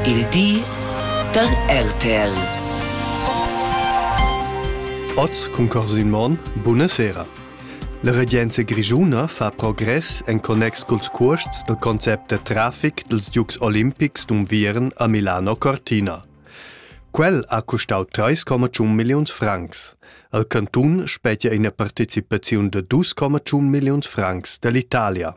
Il di da RTL. Oz cun Corsin Monn, buna sera. La regenza grischuna fa progress en connex culs cuosts dal concept da traffic dels Dukes Olimpics d'Unviern a Milano Cortina. Quel ha costau 3,1 milliuns francs. Al cantun spetgia ina partecipaziun de 2,1 milliuns francs dall'Italia.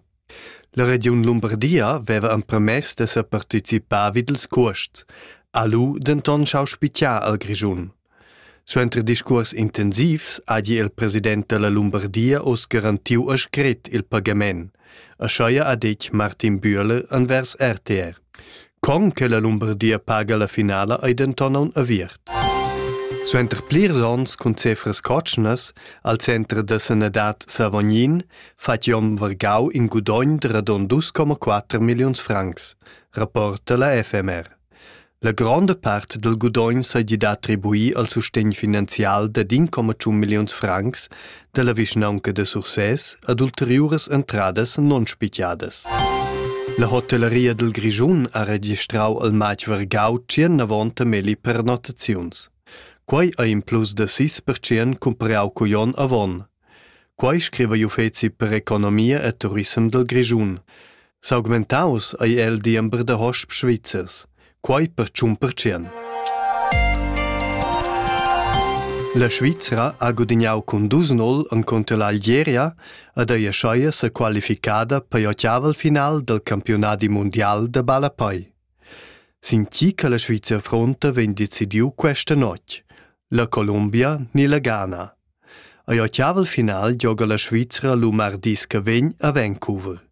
La regiun Lumbardia veva empermess da separticipar vid ils cuosts, ha lu denton schau spitgar al Grischun. Suenter discuors intensivs hagi il president dalla Lumbardia oz garantiu a scret il pagament, aschia ha detg Martin Bühler envers RTR. Con che la Lumbardia paga la finala ei denton aun aviert. Suenter plirs onns cun cefras cotschnas al center da sanadad Savognin fa Jon Vargau in gudogn de radon 2,4 milliuns francs, rapporta la FMR. La gronda part del gudogn seigi da attribuir al sustegn finanzial de 1,1 milliuns francs dalla vischnaunca da Sursès ad ulteriuras entradas non spigiadas. La hotellaria dil Grischun ha registrau al matg vargau tschernavonta melli pernottaziuns. Quei ei in plus da sis percent cumparau cugl onn avon. Quei scriva gl'uffeci per economia e turisem dal Grischun. S'augmentaus ei el diember da hosp svizzers, quei per tschun percent. La Svizra ha gudignau cun dus nol encunter l'Algeria ed ei aschia sa qualificada per l'ottaval final del campionadi mundial da ballapei. Sin chi che la Svizra fronta vegn decidiu questa notg, la Colombia ni la Ghana. Ei ottaval final gioga la Svizra lu mardis che vegn a Vancouver.